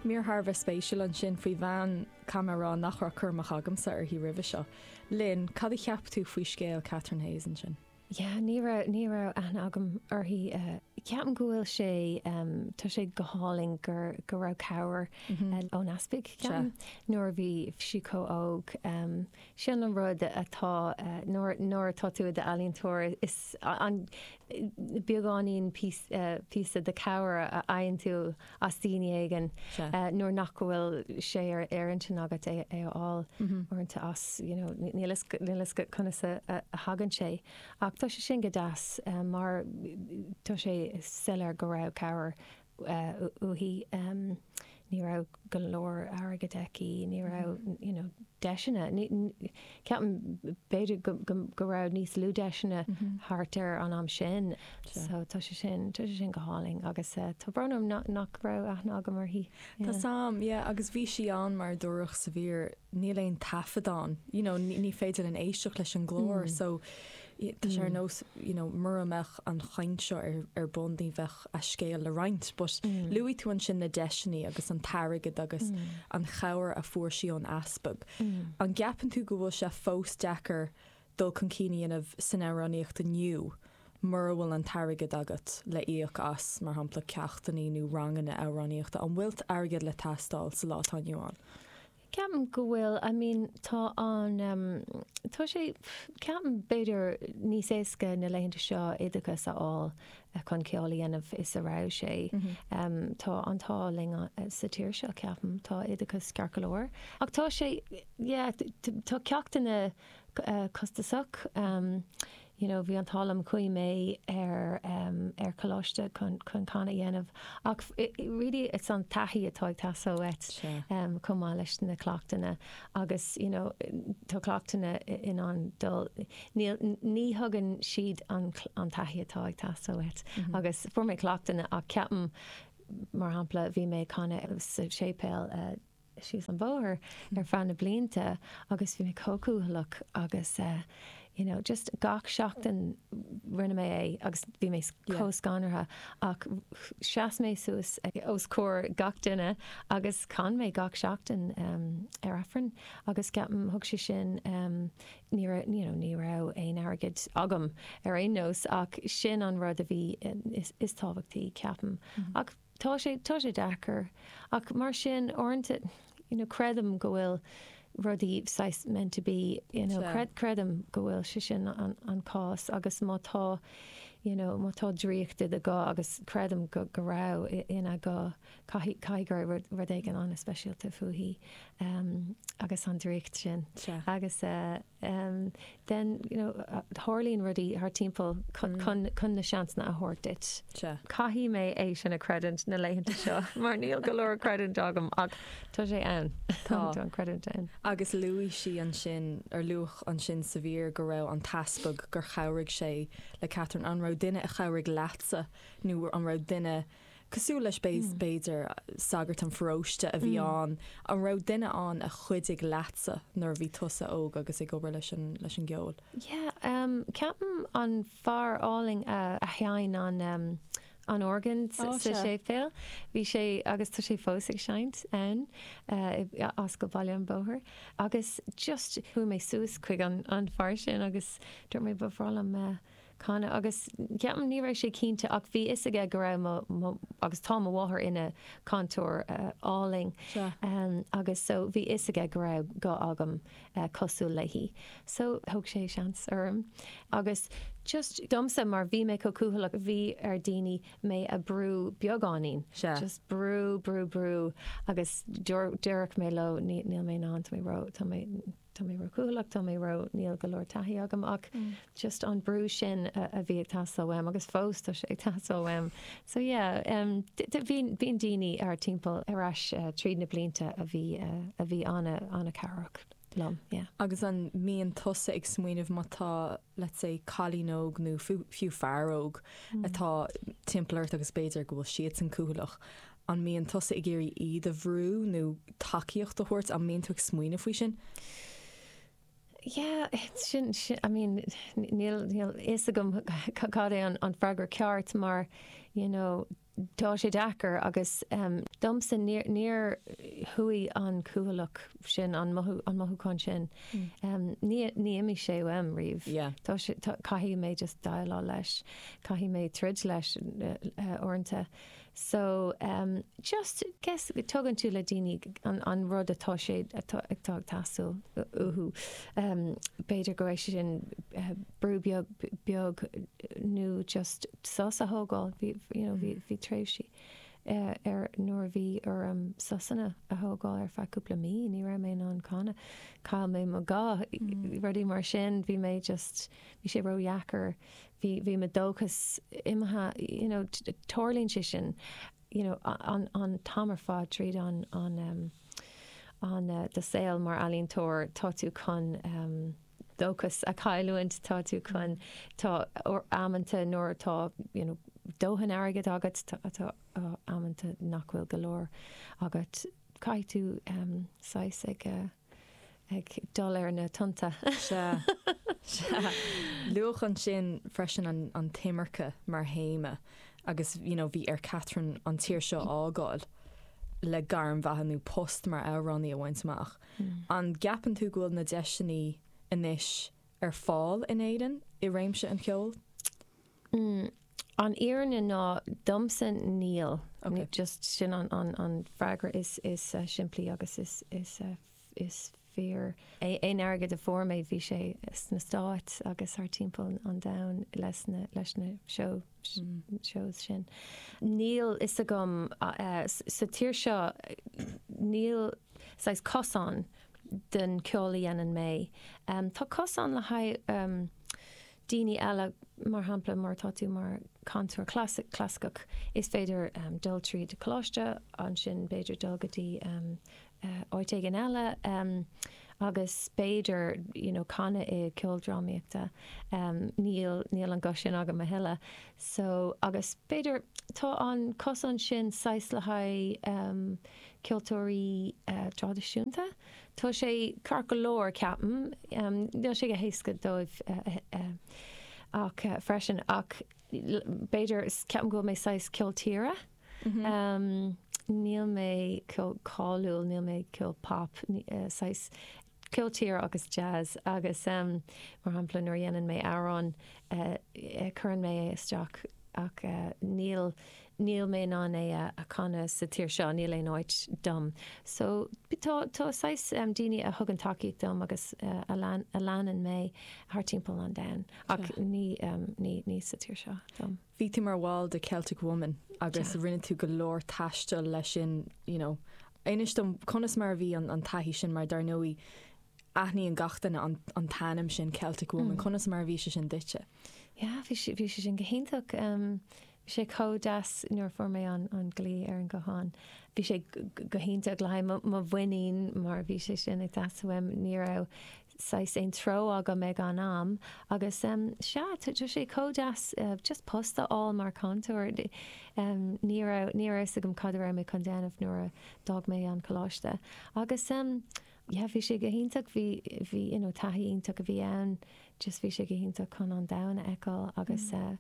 Mír thar a bheith spéisiúil ansin faoi bhean, caithfidh mé a rá nach raibh cur amach agamsa uirthi roimhe seo. Linn, cad a cheap tú faoi scéal Catherine Hayes ansin? Yeah, ní raibh, ní raibh aithne agam uirthi. Ceapaim go bhfuil sé, tá sé go hálainn gur, go raibh cabhair ón Easpaig, ceapaim, nuair a bhí sí chomh óg. Sin an rud atá, nuair atá tú i d'ealaíontóir, is ea an beagáinín píosa de cabhair a fhaigheann tú as daoine éigin, nuair nach bhfuil sé ar intinn agat é a fháil uaireanta as, you know, níl fhios agat conas a thagann sé. Ach tá sé sin go deas mar tá sé soiléir go raibh cabhair uaithi. Ní raibh go leor airgid aici, ní raibh you know deiseanna, ceapaim b'fhéidir go raibh níos lú deiseanna thart ar an am sin so tá sé sin, tá sé sin go hálainn agus tá brón orm nach raibh aithne agam uirthi. Tá sam, yeah agus is ionann mar a dúradh sa mhír, níl aon taifead ann, you know ní féidir linn éisteacht leis an nglór so Tá sé ar nós you know mura mbeadh an chaint seo ar bun ní bheadh a scéal le roinnt, but luaigh tú ansin na deiseannaí agus an t-airgead agus an chabhair a fuair sí ón Easpag. An gceapann tú go bhfuil sé fós deacair dul chun cinn a dhéanamh san amhránaíocht inniu mura bhfuil an t-airgead agat le íoc as, mar shampla, ceachtannaí nó ranganna amhránaíochta? An bhfuil airgead ag teastáil sa lá atá inniu ann? Ceapaim go bhfuil, I mean, tá an, tá sé, ceapaim, b'fhéidir níos éasca na laethanta seo oideachas a fháil chun ceol a dhéanamh is a raibh sé. Tá an t-ádh linn sa tír seo, ceapaim, tá oideachas ceart go leor. Ach tá sé, yeah, tá ceachtanna costasach. You know, bhí an t-ádh liom chuaigh mé ar ar coláiste chun chun canadh a dhéanamh ach really is an taithí atá ag teastáil uait chomh maith leis na cleachtanna agus you know tá cleachtanna in ann dul níl ní thugann siad an an taithí atá ag teastáil uait agus fuair mé cleachtanna ach ceapaim mar shampla bhí mé ag canadh sa séipéal síos an bóthar ar feadh na blianta agus bhí mé chomh cúthaileach agus you know just gach seachtain rinne mé é agus bhí mé chomh scanraithe ach sheas mé suas os comhair gach duine agus chan mé gach seachtain ar Aifreann agus ceapaim thug sé sin ní raibh you know ní raibh aon airgead agam ar aon nós ach sin an rud a bhí is tábhachtaí ceapaim ach Tá sé, tá sé deacair. Ach mar sin, uaireanta, you know, creidim go bhfuil rudaí saghas meant to be, you know, Sea. creidim go bhfuil sé sin an cás agus má tá, you know, má tá draíocht i do ghuth agus creidim go, go raibh i, ina guth, caithfidh, caithfidh go raibh rud, rud éigin an-speisialta fúithi, em, agus an draíocht sin. Sea. Agus eh. em, then, you know, tharlaíonn rudaí thar timpeall chun, chun, chun na seansanna a thabhairt duit. Sea. Caithfidh mé é sin a chreidiúint na laethanta seo mar níl go leor creidiúint agam ach tá sé ann. Tá. Tá an chreidiúint ann. Agus luaigh sí ansin, or luadh ansin sa mhír go raibh an tEaspag, gur chabhraigh sé le Catherine. An raibh duine a chabhraigh leatsa nó an raibh duine. cosúil leis b'fhéidir, sagart an pharóiste a bhí ann. An raibh duine ann a chuidigh leatsa nuair a bhí tusa óg agus ag obair leis an, leis an gceol? Yeah, ehm, ceapaim an fear álainn a, a sheinn an ehm, an orgán sa, oh, sa séipéal, bhí sé, agus tá sé fós ag seinnt ann, eh, i, i Ascal Bhaile an Bhóthair, agus just chuaigh mé suas chuig an, an fear sin agus dúirt mé ba bhreá liom eh, canadh, agus ceapaim, ní raibh sé cinnte ach bhí fhios aige go raibh mo, mo, agus tá mo mháthair ina cantóir álainn agus so bhí fhios aige go raibh guth agam cosúil léi so thug sé seans orm agus just domsa mar bhí mé chomh cúthaileach bhí ar dhaoine mé a brú beagáinín, just brú, brú, brú agus déarfadh mé leo níl mé in ann tá mé ró, tá mé. tá mé ró-chúthalach, tá mé ró, níl go leor taithí agam ach just an brú sin a bhí ag teastáil uaim agus fós tá sé ag teastáil uaim. So yeah, em bhíonn bíonn daoine thar timpeall ar ais tríd na blianta a bhí a bhí ana ana cabhrach liom yeah. Agus an mbíonn tusa ag smaoineamh má tá let's say cailín óg nó fiú fear óg atá timpeall ort agus b'fhéidir go bhfuil siadsan cúthalach An mbíonn tusa ag iarraidh iad a bhrú nó tacaíocht a thabhairt? An mbíonn tú ag smaoineamh faoi sin? Yeah, sin, I mean, níl fhios agam cad é an freagra ceart mar, you know, tá sé deacair agus domsa níor chuaigh an cúthaileacht sin, an mothúchán sin, níor imigh sé uaim riamh. Caithfidh mé just déileáil leis, caithfidh mé troid leis uaireanta. So, just, guess, tugann tú le daoine an rud atá sé atá ag teastáil uathu. B'fhéidir gurb é sin brú beag beag nó just sos a thógáil, you know, bhí bhí tréimhsí ar nuair a bhí orm sosanna a thógáil ar feadh cúpla mí, ní raibh mé in ann canadh, chaill mé mo ghuth, rudaí mar sin, bhí mé just, bhí sé ródheacair bhí, bhí mo dóchas imithe, you know, tarlaíonn sé sin, you know, an, an t-am ar fad tríd an, an ehm, an, do shaol mar ealaíontóir, tá tú chun ehm, dóchas a chailliúint, tá tú chun, tá amanta nuair atá, you know, dóthain airgid agat, tá, tá amanta nach bhfuil go leor agat, caithfidh tú ehm, saghas ag eh. ag dul ar na tonnta. Sea. Sea. Luadh ansin freisin an, an t-imirce mar théama agus you know bhí ar Catherine an tír seo a fhágáil le gairm bheatha nó post mar amhránaí a bhaint amach. An gceapann tú go bhfuil na deiseanna anois ar fáil in Éirinn i réimse an cheoil? mm, an fhírinne ná, domsa níl. Ok. Just sin an, an, an freagra is, is uh, simplí agus is, is, uh, is fíor. É, aon airgead a fuair mé bhí sé sna Stáit agus thar timpeall an domhain leis na, leis na show, mm. shows sin. Níl a fhios agam uh, sa tír seo níl saghas cosán don ceol a dhéanann mé. Um, tá cosán le haghaidh um, daoine eile. Mar shampla, má tá tú mar chantóir clasaiceach, is féidir dul tríd coláiste, ansin b'fhéidir dul go dtí áit éigin eile agus b'fhéidir you know canadh i ceoldrámaíochta. Níl, níl an guth sin agam a thuilleadh so agus b'fhéidir tá an cosán sin saghas le haghaidh ceoltóirí traidisiúnta. Tá sé ceart go leor, ceapaim. Níl sé go héasca dóibh ach freisin ach b'fhéidir, ceapaim go bhfuil mé saghas ceol tíre. Níl mé ceol cáiliúil, níl mé ceol pop, saghas ceol tíre agus jazz agus mar shampla nuair a dhéanann mé amhrán cuireann mé é isteach ach níl, níl mé in ann é a chanadh sa tír seo, níl aon áit dom. So tá tá saghas daoine a thugann tacaíocht dom agus a leanann mé thar timpeall an domhain ach ní ní ní sa tír seo dom. Bhí tú mar bhall de Celtic Woman agus rinne tú go leor taistil leis sin you know inis dom conas mar a bhí an an taithí sin mar dar ndóigh aithníonn gach duine an an t-ainm sin Celtic Woman, conas mar a bhí sé sin duitse? Yeah bhí sé bhí sé sin go hiontach. Bhí sé chomh deas nuair a fuair mé an glao ar an ghuthán. Bhí sé go hiontach le haghaidh mo mhuinín mar bhí sé sin ag teastáil uaim. Ní raibh saghas aon treo agam ag an am agus sea, tá sé chomh deas just post a fháil mar cantóir. Ní raibh a fhios agam cad a raibh mé chun déanamh nuair a d'fhág mé an coláiste agus yeah bhí sé go hiontach, bhí you know taithí iontach a bhí ann, just bhí sé go hiontach chun an domhan a fheiceáil agus yeah.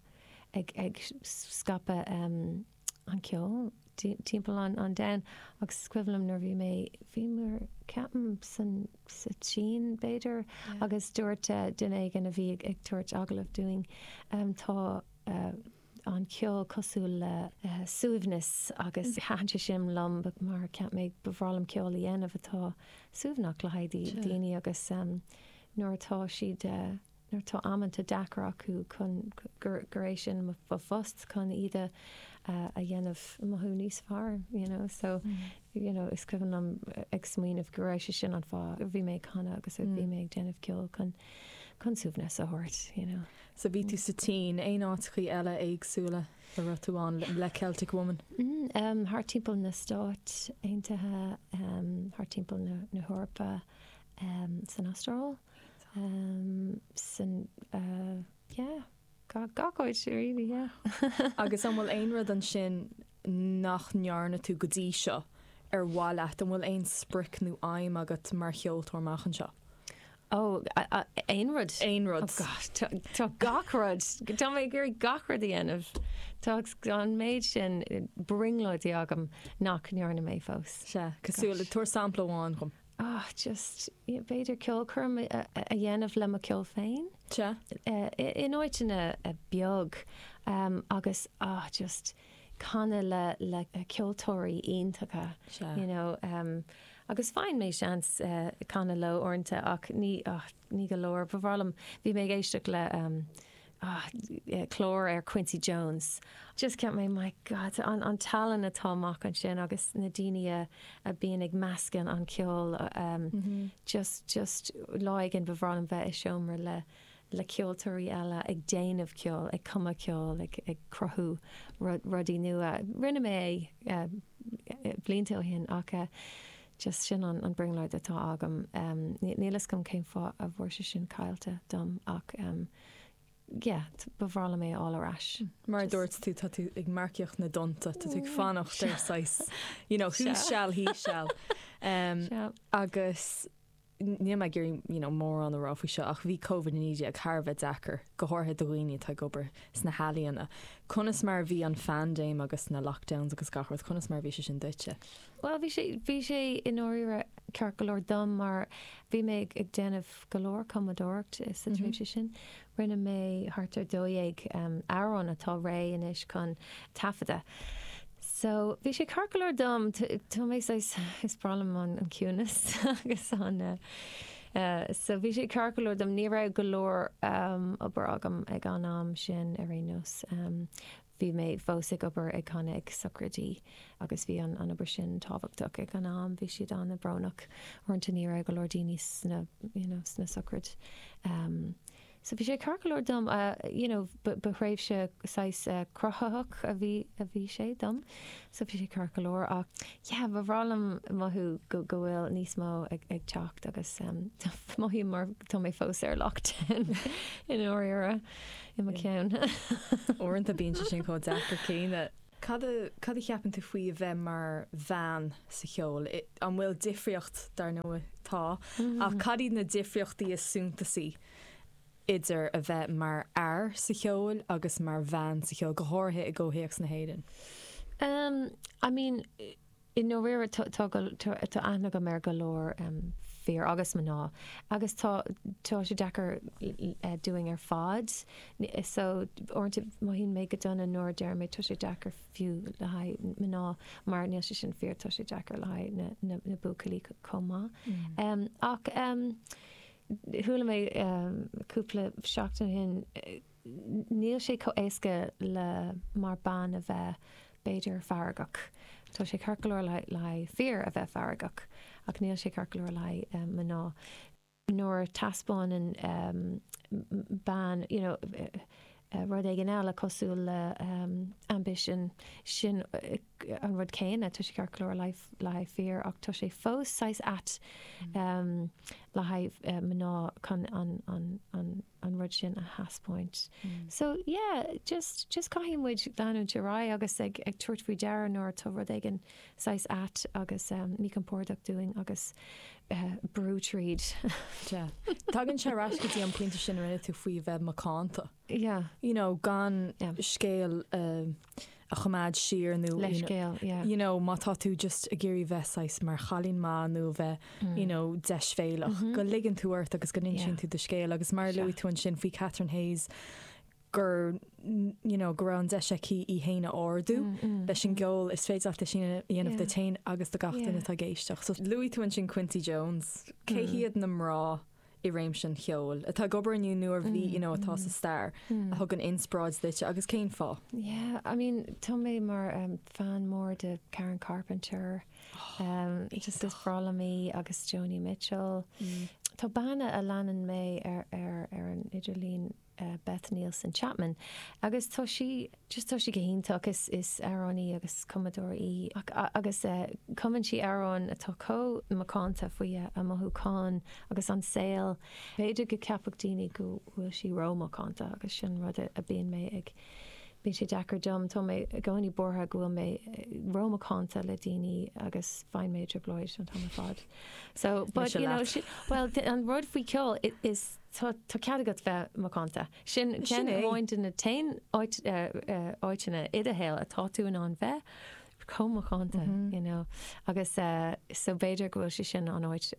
ag scaipeadh an ceoil timpeall an domhain agus is cuimhin liom nuair a bhí mé, bhí mé ceapaim san, sa tSín b'fhéidir agus dúirt duine éigin a bhí ag tabhairt agallamh dúinn tá an ceol cosúil le suaimhneas agus thaithin sé sin liom mar ceap mé ba mhaith liom ceol a dhéanamh atá suaimhneach le haghaidh daoine agus nuair atá siad nuair tá amanta deacair acu chun gur é sin mo phost chun iad a dhéanamh mothú níos fearr you know so you know is cuimhin liom ag smaoineamh go raibh sé sin an fáth a bhí mé ag canadh agus a bhí mé ag déanamh ceoil chun suaimhneas a thabhairt you know. So bhí tú sa tSín. Aon áiteachaí eile éagsúla a raibh tú ann le Celtic Woman? Umm thart timpeall na Stáit Aontaithe umm thart timpeall na hEorpa umm san Astráil. Sin yeah gach áit really yeah. Agus an bhfuil aon rud ansin nach ndearna tú go dtí seo ar mhaith leat? An bhfuil aon sprioc nó aidhm agat mar cheoltóir amach anseo? Oh aon rud? Aon rud. Oh gosh tá gach rud. Tá mé ag iarraidh gach rud a dhéanamh. Tá an méid sin brionglóidí agam nach ndearna mé fós. Sea cosúil le tabhair sampla amháin dhom. oh just yeah b'fhéidir ceolchoirm a dhéanamh le mo ceol féin in áiteanna beag agus oh just canadh le le ceoltóirí iontacha you know agus faigheann mé seans canadh leo uaireanta ach ní oh ní go leor ba mhaith liom bhí mé ag éisteacht le Ah, clár ar Quincy Jones. Just ceap mé, my God, an tallann atá amach ansin agus na daoine a bíonn ag meascan an ceol. Just lá éigin ba bhreá liom bheith i seomra le ceoltóirí eile ag déanamh ceoil, ag cumadh ceoil, ag cruthú rudaí nua. Rinne mé é blianta ó shin ach just sin an brionglóid atá agam. Níl fhios agam cén fáth a bhfuair sé sin caillte dom ach Yeah, ba bhreá liom é a fháil ar ais. Mar a dúirt tú, tá tú ag marcaíocht na dtonnta, tá tú ag fanacht ar saghas, you know, who shall, he shall. Agus níl mé ag iarraidh, you know, mórán a rá faoi seo ach bhí Covid-19 thar a bheith deacair, go háirithe do dhaoine atá ag obair sna healaíona. Conas mar a bhí an phaindéim agus na lockdowns agus gach rud, conas mar a bhí sé sin duitse? Bhuel, bhí sé, bhí sé i ndáiríre ceart go leor dom mar bhí mé ag déanamh go leor cumadóireacht sa tréimhse sin. Rinne mé thart ar dó dhéag amhrán atá réidh anois chun taifeadadh. So, bhí sé ceart go leor dom, tá mé saghas, is breá liom an ciúnas agus an eh so bhí sé ceart go leor dom, ní raibh go leor obair agam ag an am sin ar aon nós. Bhí mé fós ag obair ag canadh ag sochraidí agus bhí an an obair sin tábhachtach ag an am. Bhí siad ana brónach uaireanta ní raibh go leor daoine sna you know sna sochraidí ehm so bhí sé ceart go leor dom a you know ba thréimhse saghas cruthaitheach a bhí a bhí sé dom so bhí sé ceart go leor ach yeah ba bhreá liom mothú go go bhfuil níos mó ag ag teacht agus ehm mothaím mar tá mé fós ar lockdown in ndáiríre. i mo cheann. Uaireanta bíonn sé sin chomh deacair céanna. Cad a cad a cheapann tú faoi a bheith mar bhean sa cheol? I an bhfuil difríocht, dar ndóigh tá, ach cad iad na difríochtaí is suntasaí idir a bheith mar fhear sa cheol agus mar bhean sa cheol, go háirithe i gcomhthéacs na hÉireann? Em I mean I ndáiríre tá aithne agam ar go leor fir agus mná agus tá tá sé deacair dúinn ar fad so uaireanta mothaíonn mé go dona nuair a deir mé tá sé deacair fiú le haghaidh mná mar níl sé sin fíor, tá sé deacair le haghaidh na buachaillí chomh maith. Ach chuala mé cúpla seachtain ó shin, Níl sé chomh éasca le mar bean a bheith b'fhéidir feargach. Tá sé ceart go leor le haghaidh fir a bheith feargach ach níl sé ceart go leor le haghaidh mná. Nuair a teaspáineann bean you know rud éigin eile cosúil le ambition sin an rud céanna tá sé ceart go leor le haghaidh fir ach tá sé fós saghas ait le haghaidh mná chun an an rud sin a thaispeáint. So yeah, just just caithfidh muid leanúint ar aghaidh agus ag ag tabhairt faoi deara nuair atá rud éigin saghas ait agus eh míchompordach dúinn agus eh brú tríd. Sea. Tagann sé ar ais go dtí an pointe sin a rinne tú faoi bheith macánta. Yeah. You know, gan Yeah. scéal eh a choimeád siar nó leithscéal yeah. you know, má tá tú just ag iarraidh bheith saghas mar chailín maith nó a bheith mm. you know, deisbhéalach, mm -hmm. go ligeann tú ort agus go n-insíonn yeah. tú do scéal agus mar yeah. luaigh tú ansin faoi Catherine Hayes gur you know, go raibh an deis aici í féin a ardú mm, mm, leis an mm. gceol is féidir leat é sin a dhéanamh yeah. duit féin agus do gach duine yeah. atá ag éisteacht. So luaigh tú ansin Quincy Jones, cé hiad na mná i réimse an cheoil atá ag obair inniu nó a bhí you know atá sa stair a thugann inspioráid duitse agus cén fáth? Yeah, I mean, tá mé mar fan mór de Karen Carpenter, just is breá liom í agus Joni Mitchell. Tá bean a leanann mé ar an idirlíon Beth Nielsen Chapman agus tá sí just tá sí go hiontach is is amhránaí agus cumadóir í ach agus cumann sí amhráin atá chomh macánta faoi a mothúcháin agus an saol b'fhéidir go gceapfadh daoine go bhfuil sí rómhacánta agus sin rud a bíonn mé ag bíonn sé deacair dom tá mé i gcónaí buartha go bhfuil mé rómhacánta le daoine agus bíonn mé i dtrioblóid an t-am ar fad so but you know she, well an rud faoi ceol is Tá cead agat bheith macánta. Sin ceann amháin de na haon áiteanna i do shaol atá tú in ann bheith chomh macánta you know agus so b'fhéidir go bhfuil sé sin an áit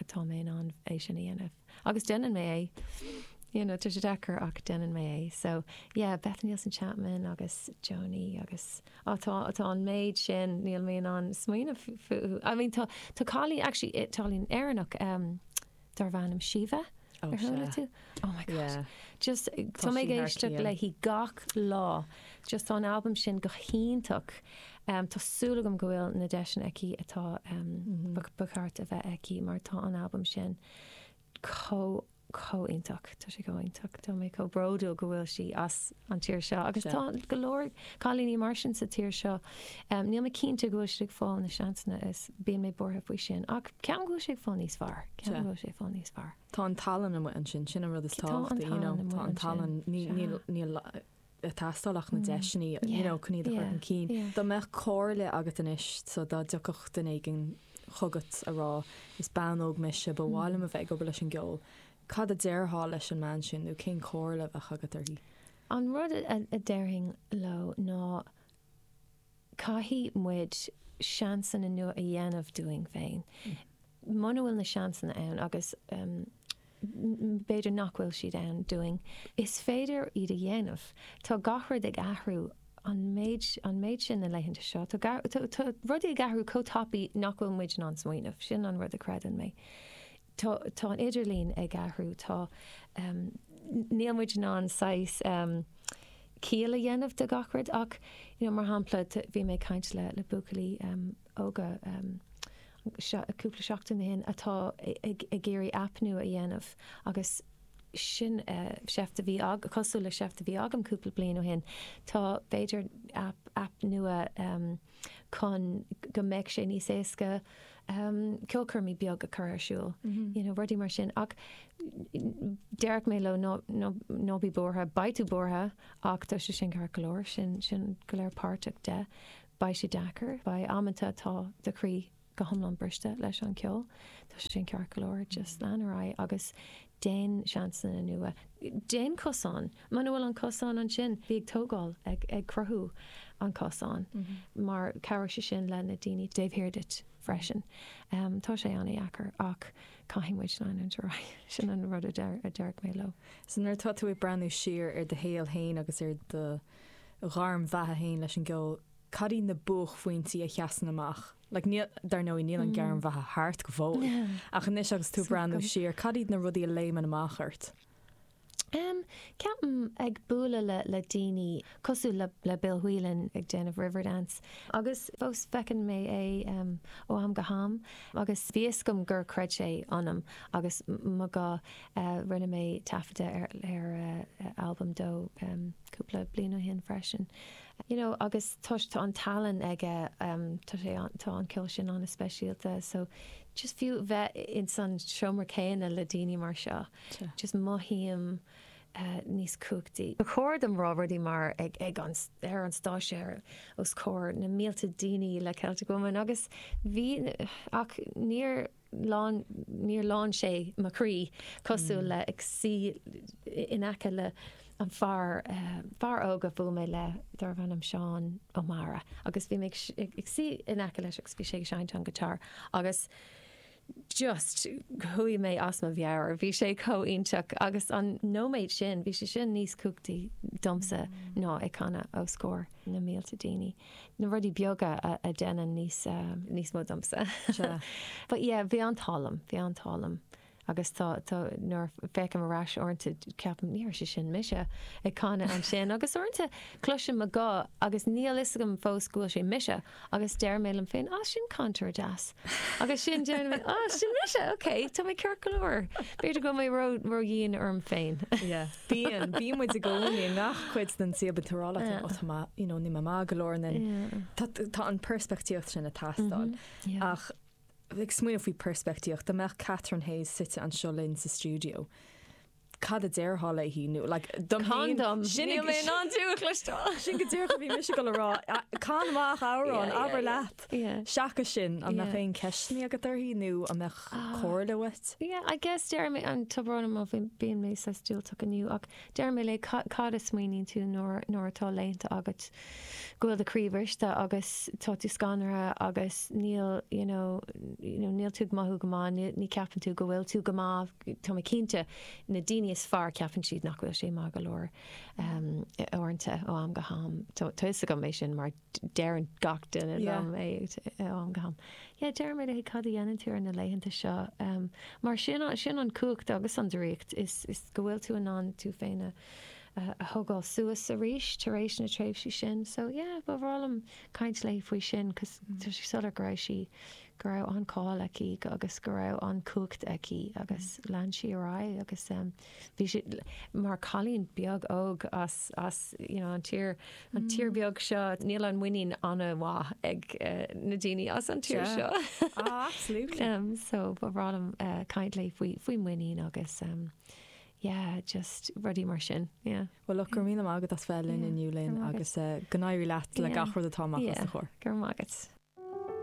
atá mé in ann é sin a dhéanamh agus déanann mé é you know tá sé deacair ach déanann mé é so yeah Beth Nielsen Chapman agus Joni agus á tá atá an méid sin níl mé in ann smaoineamh fúthu I mean tá tá cailín actually Italian Éireannach um Darbh ainm Síomha ar chuala tú? Oh my god. Just tá mé ag éisteacht léi gach lá. Just tá an albam sin go hiontach. Tá súil agam go bhfuil na deiseanna aici atá ba cheart a bheith aici mar tá an albam sin chomh iontach. Tá sé chomh iontach. Tá mé chomh bródúil go bhfuil sí as. an tír seo. Agus tá go leor cailíní mar sin sa tír seo. Níl mé cinnte go bhfuil siad ag fáil na seansanna is bíonn mé buartha faoi sin. Ach ceapaim go bhfuil sé ag fáil níos fearr. Ceapaim go bhfuil sé ag fáil níos fearr. Tá an tallann amuigh ansin, sin an rud is tábhachtaí, you know. Tá an tallann amuigh ansin. Tá an tallann, níl ag teastáil ach na deiseanna, you know, chun iad a chur chun cinn. Dá mbeadh comhairle agat anois, so dá dtiocfadh duine éigin chugat ag rá, is bean óg mise, ba mhaith liom a bheith ag obair leis an gceol, Cad a déarfá leis an mbean sin nó cén chomhairle a bheadh agat uirthi? An rud a déarfainn leo ná caithfidh muid seansanna nua a dhéanamh dúinn féin. Muna bhfuil na seansanna ann agus b'fhéidir nach bhfuil siad ann dúinn, is féidir iad a dhéanamh. Tá gach rud ag athrú an méid sin na laethanta seo. Tá rudaí ag athrú chomh tapaidh nach bhfuil muid in ann smaoineamh. Sin an rud a chreideann mé. Tá, tá an idirlíon ag athrú, tá, níl muid in ann saghas ciall a dhéanamh de gach rud ach, you know, mar shampla bhí mé ag caint le, le buachaillí óga cúpla seachtain ó shin atá ag, ag iarraidh app nua a dhéanamh agus sin seift a bhí agam, cosúil le seift a bhí agam cúpla bliain ó shin, tá b'fhéidir app, app nua. chun go mbeadh sé níos éasca ceolchoirmí beag a chur ar siúl, you know, rudaí mar sin. Ach déarfadh mé leo ná, ná, ná bí buartha. Beidh tú buartha ach tá sé sin ceart go leor. Sin, sin go léir páirteach de. Beidh sé deacair. Beidh amanta atá do chroí go hiomlán briste leis an ceol. Tá sé sin ceart go leor, just lean ar aghaidh agus déan seansanna nua. Déan cosán, muna bhfuil an cosán ansin, bí ag tógáil, ag cruthú an cosán mar cabhróidh sé sin le na daoine taobh thiar duit freisin. Tá sé an-deacair ach caithfidh muid leanúint ar aghaidh, sin an rud a déarfaidh mé leo. So nuair atá tú ag breathnú siar ar do shaol fhéin agus ar do ghairm bheatha fhéin leis an gceol, Cad iad na buaicphointí a sheasann amach? Like níl, dar ndóigh, níl an ghairm bheatha thart go fóill. Ach anois agus tú ag breathnú siar, cad iad na rudaí a léimeann amach ort? Em, ceapaim ag bualadh le, le daoine, cosúil le, le Bill Whelan ag déanamh Riverdance. Agus fós feiceann mé é em, ó am go ham agus bhí a fhios agam gur chreid sé ionam agus mo gha eh, rinne mé taifeadadh ar, ar eh, albam dó em, cúpla bliain ó shin freisin. You know agus toisc tá an tallann aige tá sé tá an ceol sin ana speisialta so just fiú bheith in san seomra céanna le daoine mar seo just mothaím níos cumhachtaí. Ba chóir dom rá rudaí mar ag ag an ar an stáitse ar os comhair na mílte daoine le Celtic Woman agus bhí ach níor lán, níor lán sé mo chroí cosúil le ag suí in aice le an fear, fear óg a bhuail mé le darbh ainm Seán Ó Meára agus bhí mé ag suí in aice leis agus bhí sé ag seinnt an guitar agus just chuaigh mé as mo mheabhair, bhí sé chomh iontach agus an nóiméad sin bhí sé sin níos cumhachtaí domsa ná ag canadh os comhair na mílte daoine. na rudaí beaga a deineann níos. níos mó domsa. Sea. But yeah, bhí an t-ádh liom, bhí an t-ádh liom. Agus tá, tá, nuair a féachaim ar ais uaireanta ceapaim ní raibh sé sin mise ag canadh ansin agus uaireanta cloisim mo guth agus níl fhios agam fós go bhfuil sé mise agus deir mé liom féin ah sin cantaire deas agus sin deir mé ah sin mise ok tá mé ceart go leor. B'fhéidir go bhfuil mé ró, ró dhian orm féin. Yeah. Bíonn, bíonn muid i gcónaí i ngach cuid den suíomh an tSaorálach féin, ó tá mé, you know, níl mé maith go leor yeah, tá, tá an peirspictíocht sin ag teastáil. Ach, ag smaoineamh faoi peirspictíocht, dá mbeadh Catherine Hayes suite anseo linn sa stiúideo, cad a déarfá léi nó like, dom féin, sin, Can dom! Níl mé in ann tú a chloisteáil! sin go díreach a bhí mise chun a rá, a, can amach amhrán, abair leat! Yeah. Seachas sin, an mbeadh Yeah. aon ceisteannaí agat uirthi nó an mbeadh Ah. comhairle uait? Yeah, I guess déarfainn, tá brón orm ó bhí- bíonn mé sách diúltach inniu ach déarfadh mé léi ca- cad a smaoiníonn tú nuair nuair atá laethanta agat go bhfuil do croí bhriste agus tá tú scanraithe agus níl you know, you know, níl tú ag mothú go maith, ní ní cheapann tú go bhfuil tú go maith, tá mé cinnte na daoine is fearr ceapann siad nach bhfuil siad maith go leor um, i- uaireanta ó am go ham. Tá tá 'fhios agam é sin mar deireann gach duine liom ó am go ham. Yeah, déarfadh mé léi cad a dhéanann tú ar na laethanta seo. Mar sin, sin an cumhacht agus an draíocht is go bhfuil tú in ann tú féin a thogáil suas arís tar éis na tréimhsí sin. So, yeah, ba bhreá liom caint léi faoi sin cos tá sé soiléir go raibh sí, go raibh an-cháil aici agus go raibh an-chumhacht aici agus lean sí ar aghaidh agus, bhí sí mar cailín beag óg as as you know an tír an tír beag seo níl an muinín ana mhaith ag na daoine as an tír seo. Ah absolutely. Umm so ba bhreá liom caint léi faoi faoi muinín agus umm yeah just rudaí mar sin yeah. Well look go raibh míle maith agat as bheith linn inniu Lynn agus go n-éirí leat le gach rud atá amach os do chomhair. Go raibh maith agat.